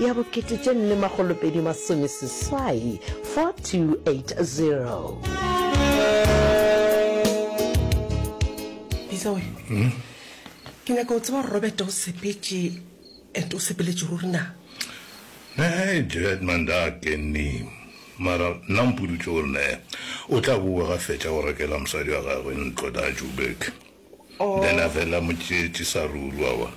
ya bo kete tše nne magolopedi masomeseswai 4280 bisa we hmm? ke nyaka o tseba robert o sepetše and o sepeletše ruri na ne jet manda kenni mara nna mpodutse gore ne o tla boa ga fetša go rekela mosadi wa gagwe ntlo da jubek oh. then a fela motšetše sa ruri wa bona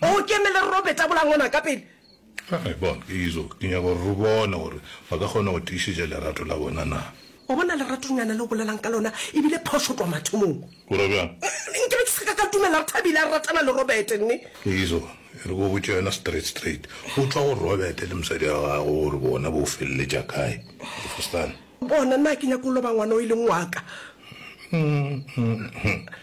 Mo keme le robe tabolang ona ka pele. Hai, bona, ke izo, ke nyaka gore re bone gore ba ka kgona go tiišetša lerato la bona na. Wa bona leratonyana le o bolelang ka lona e bile phošo tloga mathomong. O ra bjang? Nke be ke se ka ka dumela gore Thabile a ratana le Robert, nne. Ke izo, e re ke go botše yona straight, straight. Go tšwa go Robert le mosadi wa gagwe gore bona bo feleletša kae. Ofostan. Bona, nna ga ke nyake go loba ngwana o e leng wa ka. Umm, umm, umm.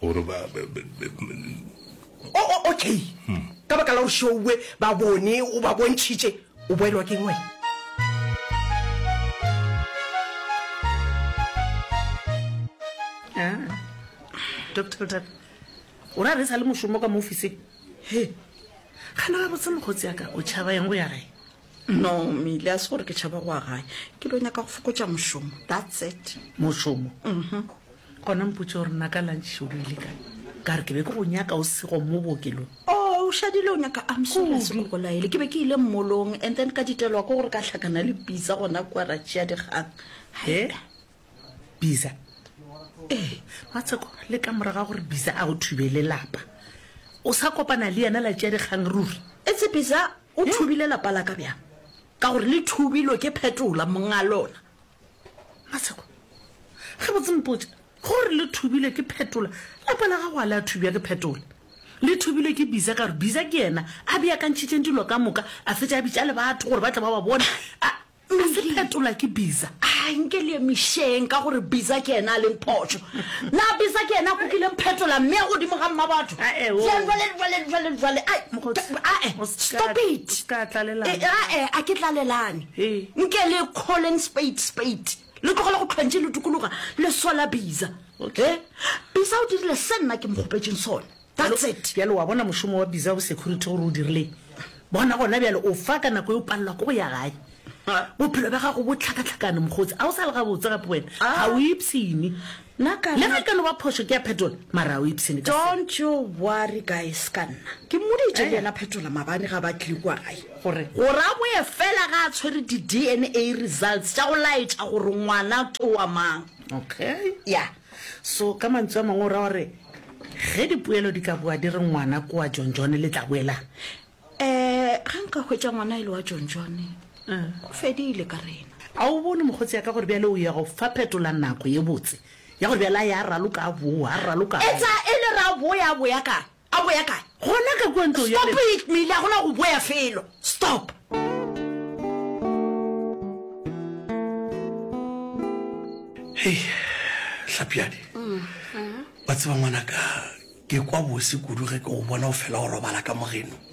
gore ba O, o, okay. Ka baka la gore šoue ba bone o ba bontšhitše, o boelwa ke eng wena? Ah, Doctor Bothata, o ra re sa le mošomo ka mo ofising? He, gana gabotse mokgotsi ya ka, o tšhaba eng go ya gae? No Mile, a se gore ke tšhaba goa gae. Ke lo nyaka go fokotša mošomo. That's it. Mošomo? Mhm. Gona mpotše gore na ka lunch o ile kae? Ka re ke be ke go nyaka o sego mo bookelong. Oh, o šadile o nyaka I'm sorry a se go bolaele. Ke be ke ile mmolong and then ka ditelwa ke gore ka hlakana le Pizza gona kua ra tšea dikgang. He? Biza? Ee, Matsheko, le ka mora ga gore Biza a go thubele lapa. O sa kopana le yena la tšea dikgang ruri? It's a Pizza. O thubile lapa la ka bjang? Ka gore le thubilwe ke Phetola, monga lona. Masego, Ge botse mpotše, ge o re le thubilwe ke Phetola, lapa la gago a le a thubja ke Phetola. Le thubilwe ke Biza ka gore Biza ke yena a beakantšhitšeng dilo ka moka, a fetša a bitša le batho gore ba tle ba ba bone, a Nka se phetola ke Biza. A nke le emišeng ka gore Biza ke yena a leng phošo. Na Biza ke yena a kukileng phetola mme ya godimo ga mma batho? Ae, oo. Jwale, jwale, jwale, jwale, jwale. Ai, Mokgotsi, ae, o ska- stop it. o ska tlalelana. E, ae, a ke tlalelane. Ee. Nke le calling spade spade. Le tlogele go tlhwantše le dukologa le sola Biza. Okay. Eh, Biza o dirile se nna ke mo kgopetšeng sona. That's it. Bjale wa bona mošomo wa Bizarre Security gore o dirileng? Bona gona bjale o fa ka nako e o palelwa ke go ya gae. Bophelo bja gago bo tlhakatlhakane mokgotsi. Ga o sa le gabotse gape wena. Ga o ipshine. Nna ka Le ge e ka no ba phošo ke ya phetola mara ga o ipshine ka seo. Don't you worry guys ka nna. Ke mmoditše le yena phetola mabane ga ba tle kua gae. Gore? Gore a boe fela ga a tshwere di-DNA results tša go laetša gore ngwana ke wa mang. Okay. Yeah. So, ka mantswe a mangwe o ra gore ge dipoelo di ka boa di re ngwana ko wa jonjone le tla boelang? Um ga nka hwetša ngwana e le wa jonjone go fedile ka rena. A o bone mokgotsi ya ka gore bjale o ya go fa phetola nako ye botse ya gore bjale a ya raloka a boa, a raloka a boa. Etsa e le ra boya a boya kang? A boya kae? Gona ka kua ntlong ya Stop it, Milly, a gona go boya felo. Stop! Hei, Hlapiadi, wa tseba ngwanaka, ke kwa bose kudu ge ke go bona o fela o robala ka mogeno.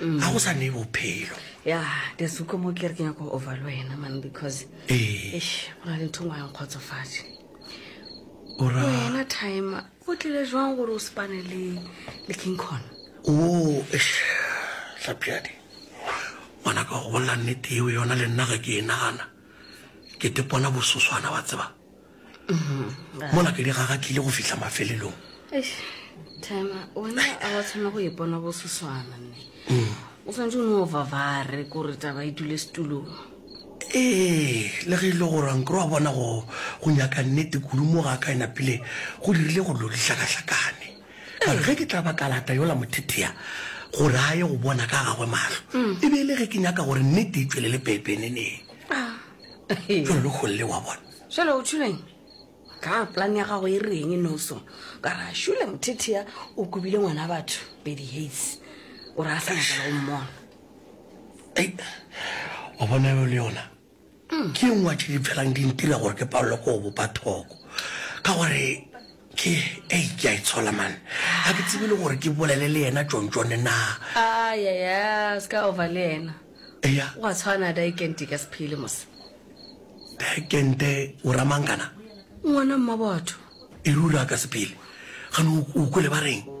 ga go sa ne bophelo ya desuko mo kere ke nyako over le wena man because ee go na le ntho ngwa yang kgotsofatse wena time go tlile jwang gore o sepane le le king con o tlapjadi ngwana ka go bolela nnete eo yona le nna ga ke e nagana ke tepona bososwana wa tseba mm-hmm. mola pele ga ga tlile go fitlha mafelelong tema wena a wa tshwana go ipona go seswana nne mm. o tshwanetse o ne o vavare kore taba e dule setulong ee le ge e le gore ankere wa bona go nyaka nnete kudu mo ga ka ena pele go dirile go lo dihlakahlakane kare ge ke tla ba kalata yola mothethea gore a ye go bona ka gagwe matlho mm. e be e le ge ke nyaka gore nnete e tswelele pepeneneng ah. jalo le kgolele wa bona Šele o tšhuleng? Ka plan ya gago e reng noso? Ka ra šule mothethea o kubile ngwana batho Betty Hates. O ra sa nyakala go mmona. Ei, o bona yo le yona ke ngwa tše di felang di ntira gore ke palelwe ke go bopa thoko ka gore Ke, ei, ke a itshola, man. Ga ke tsebe le gore ke bolele le yena tšontšone na. Ayaya, se ka over le yena. Eya. O a tshwana, Daekente ka sephele mose. Daekente, o ra mang kana? Ngwana mmabatho. E ruri a ka sephele. Gane o kwele ba reng?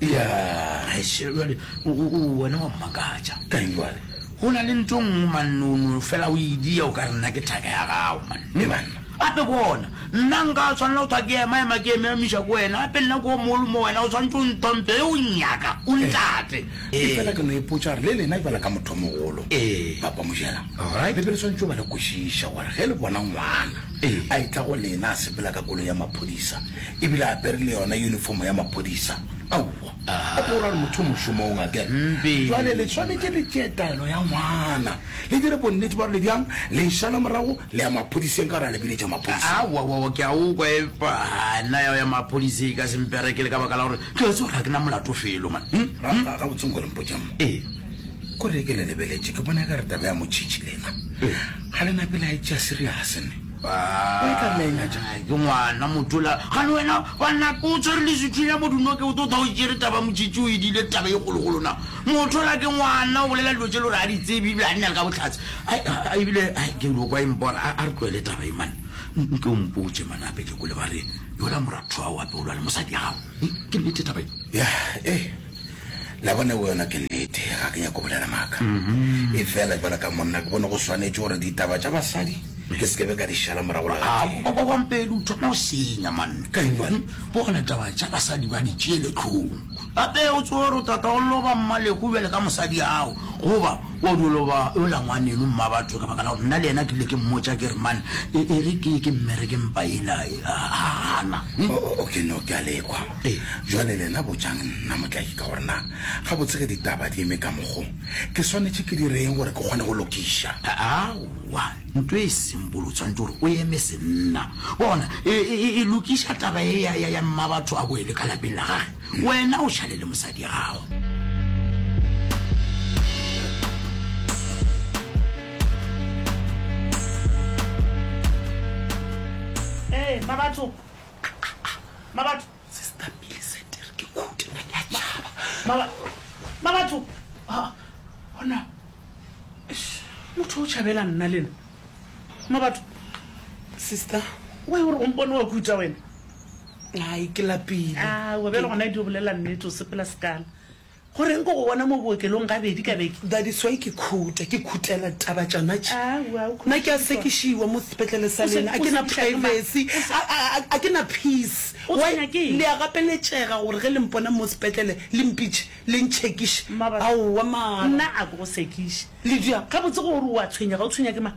Ya, gaešo jale o, o, o, wena wa mmakatša. Ka eng jale? Go na le nto nngwe, manne, o no fela o idia o ka re nna ke thaka ya gago, manne, manne. Gape bona, nna nka tshwanela go thwa ke ema-ema ke eme-amiša ko wena, gape nna ke o mogolo mo wena, o tshwanetse o nthompe ge o nnyaka, o ntate. Ee. Efela ke no ipotša gore le lena bjala ka motho o mogolo, Ee. Papa Mojela, All right. le be le swanetše go ba le kwešiša gore ge le bona ngwana Ee. a etla go lena a sepela ka koloi ya maphodisa, e bile a apere le yona yunifomo ya maphodisa. Aowa, a ke o rare motho mošomong a ke re. Bjale le swanetše le tšee taelo ya ngwana, le dire bonnete bja gore le bjang le e šala morago le ya maphodiseng ka gore a le biletša maphodiseng. Aowa, ke a o kwa, epa nna ya go ya maphodiseng e ka se mperekele ka baka la gore ke a tseba gore ga ke na molato felo. Mane, gabotse nko le mpotše mo. Ko re ke le lebeletse ke bona e ka re taba ya motšhitšhi lena ga le na pele a e tšea serious ne? Where ka mena? Ke ngwana motola gane wena banna o tshwere lesuthu ya modunoke o tota o tšere taba motšitši o edile taba e kgologolo na motola ke ngwana o bolela dilo tše le gore a di tsebe ebile a nna le ka botlhatse ebile ke dilo kwa embona a re tloele taba e mane nke o mpotše mane gape ke kole ba re yola moratho wa o apeolwa le mosadi ya gago ke nnete taba e ya ee La bona, e boyona ke nnete, ga ke nyake go bolela maaka. Efela bjalo ka monna, ke bone go swanetše gore ditaba tša basadi ke se ke be ka di šala morago le gatee. A, Bobampedi, o thoma go senya, manna. Ka England, bona taba tša basadi ba di tšeele hlong. Gape o tsebe gore tata o loba mmalego bjale ka mosadi'ago, goba o dio loba yola ngwaneno, mmabatho, ka baka la gore nna le yena ke ile ke mmotša ke re, Mane, e, e re ke ye ke mmereke mpa yela, e, a, a gana. O, o, o, ke no, ke a le kwa. Ee, bjale lena botšang nna, Motlaki, ka gore na gabotse ge ditaba di eme ka mokgo, ke swanetše ke dire eng gore ke kgone go lokiša? Aowa, ntlo e seng bolo, o swanetše gore o eme senna. Bona, e, e, e, e lokiša taba ye ya, ya, ya mmabatho a boele ka lapeng la gage. Wena o šale le mosadi gago. Ee, mmabatho, Mabatho. Sister Millicent e re ke khuti nna ke a tšhaba. Maba, Mabatho. Ha, hona. Eish, motho o tšhabela nna le nna. Mabatho. Sister, why o re o mpone wa kuta wena? Ai, ke lapile. Aowa, bjale gona e di o bolela nnete, o sepela sekala. Go reng ko go bona mo bookelong gabedi ka beke? That is why ke khuta, ke khutela ditaba tšona tše. Aowa, o Nna ke a khutišitšwa. sekišiwa mo sepetlele sa O se- lena, a o ke na sekiša ke mang? privacy, O se- a, a, a, a ke na peace. O Why? tshwenya ke eng? Le a gapeletšega gore ge le mpona mo sepetlele le mpitše, le ntšhekiše. Mmabatho, Aowa mara. Nna a ke go sekiše. Lydia, gabotse gore o a tshwenyega, o tshwenya ke mang?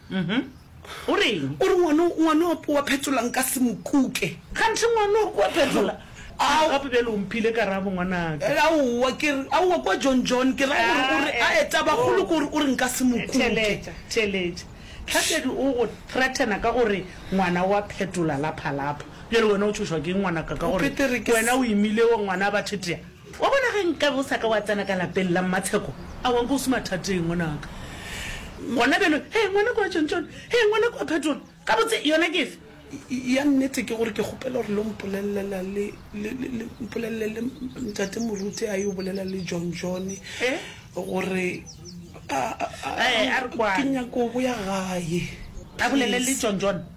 O reng? O re ngwano, ngwano wa wa phetola nka se mo kuke. Kganthe ngwano wa wa phetola. A re gape bjale o mphile karabo ngwanaka. Aowa, ke re, aowa kwa John John, ke ra gore, o re, ae, tabakgolo ke gore o re nka se mo kuke. Theletša, theletša. Tlhatedi o go threatena ka gore ngwana wa phetola laphalapha. Bjale wena o tšhošwa ke eng ngwanaka ka gore wena o imile wa ngwana a ba thetea? Wa bona, ge nkabe o sa ka wa tsena ka lapeng la Mmatsheko, awa nka o se mathateng, ngwanaka. Gona bjalo, hee, ngwanaka wa Tšontšone, hee, ngwanaka wa Phetola, gabotse, yona ke efe? Ya nnete ke gore ke kgopela gore lo mpolellela le, le, le, le mpolelele le Ntate Moruti a yo bolela le Jonjone gore a, a, a, a, ke nyaka go boya gae, please. A bolele le Jonjone?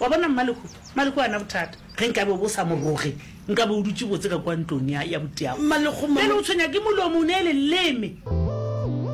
Wa bona, Mmalekhu, Mmalekhu o a na bothata. Ge nkabe o be o sa mo roge, nkabe o dutše botse ka kua ntlong ya, ya botiago. Mmalekhu, mama. Bjale o tshwenya ke molomo, o ne leleme.